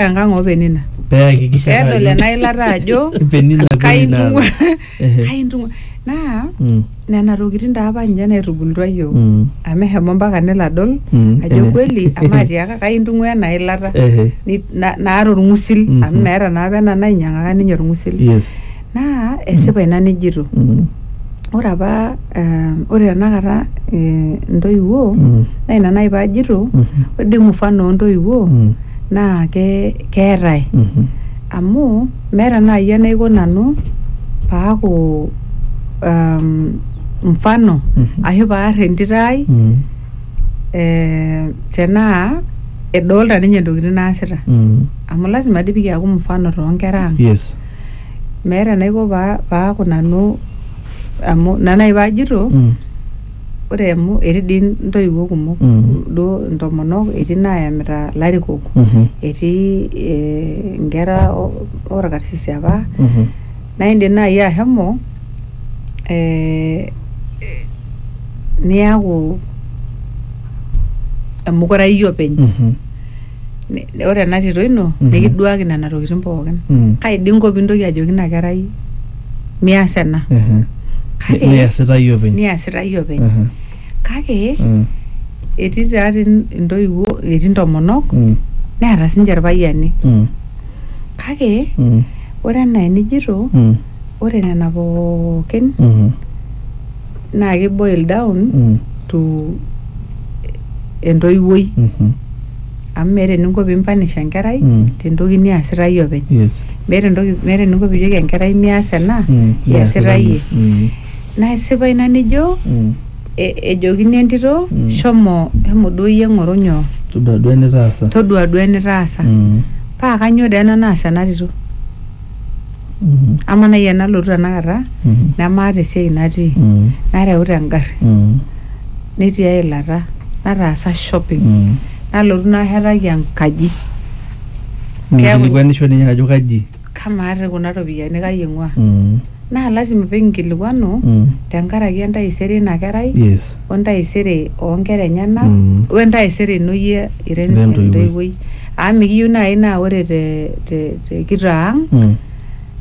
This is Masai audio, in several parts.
enkang oo penina pee ayakikisha ajo pedol ena ilata ajo Penina vile kaintung'ua inaata. Ehe. kaintung'ua naa Mm, nena tokitin taa apa ninche naitubulutua yiok mm, amu eshomo mpaka nelo adol Mm, ajo ehe. kweli amu atiaka kaintung'ua ena ilata ehe, Ni- na- naata orng'usil Mm, amu mm. meeta naa apa ena nainyiang'aka ninye orng'usil yes Naa esipa ina nijito. Ore apa ore tenakata intoiwuo naa ina naaji paajito ore doi mfano oo ntoiwuo naa keetae amu meeta naaji enaiko nanu paaku mfano ashu paar entito ai tenaa edolita ninye intokitin naasita amu lazima dii pee kiaku mfano too nkera ang. meeta enaiko paa paaku nanu amu ina naaji paajito Mm. ore amu etii dii intoiwuo kumok Mm. duo intomonok etii naayamita ilarikok Mhm. etii eh, inkera o- orkarsisi apa Mhm. naa indim naaji ashomo eh, eh, niaku emukurai iyie openy Mhm. ni- ore ena tito ino Mhm. nikiduaki nena tokitin pookin Mm. kai dii inko pintoki ajoki ina kerai mias ena Ehe. Kake- Niasita iyie openy. niasita iyie openy Ehe. kake Mm. etii taa ti intoiwuo etii intomonok Mm. neeta sinche irpayiani Mm. kake Mm. ore enaa enijito Mm. ore nena pookin Mhm. naa ki boil down Mm. to entoiwuoi Mhm. amu meeta eninko pimpanish enkerai Mm. tentoki niasita iyie openy Yes. meeta entoki meeta eninko pijoki enkerai mias ena Mm. iasita iyie Mm. naa isipa ina nijo Mm. e- ejokini entito Mm. shomo shomo duo iyie ng'oru nyoo Todua duo enitaasa. todua duo enitaasa Mm. paa kanyoo dee ena naas ena tito Mhm. ama nai enalotu tenakata Mhm. nemaata esiai natii Mm. nareuta engarri Mm. netii eilata nataasa shopping Mm. nalotu nashetaki enkaji Keeku- Nikilikwanisho ninye ajo kaji. kamaa te kuna ropiyiani kai ing'ua Mm. naa lasima pikinkilikuanu Mm. tenkaraki entaisere ina kerai Yes. o entaisere oo nkera enyena Mm. o entaisere ino iyie ira Ira entoiwuoi. entoiwuoi amu mikiyieu naaji naa ore te, te, te kitaa ang Mm.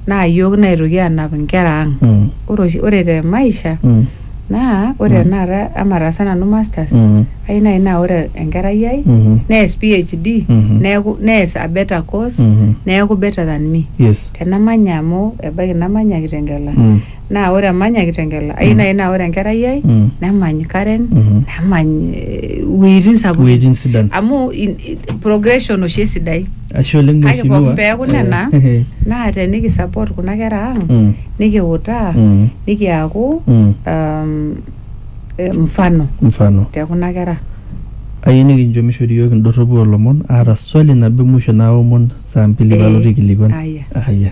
naa iyiook naitoki aanap inkera ang Mm. ore oshi ore te maisha Mm. naa ore Mm. tenakata ama ataasa nanu masters Mm. ai naaji naa ore enkerai ai Mhm. nees PhD Mhm. neeku nees a better course Mhm. neeku better than me Yes. tenamanya amu ebaiki namanya kitengela Mm. naa ore emany ake kitengela ayieu naaji naa ore enkerai ai Mm. nemany Karen Mhm. nemany eh, iwuejitin sapukin Iwuejitin sidan. amu in- i- progression oshi esidai Ashe oleng kake mheshimiwa. pookin peeku nena Eh, naa teniki support kuna kera ang Mm. nikiutaa Mm. nikiaku Mm. um, eh, mfano Mfano. te kuna kera Ayieu nikincho mishori iyiook indorropu oolomon aata swali nabo emusho naomon saa mbili Eh, paalotu aikilikuan. aya. Aya.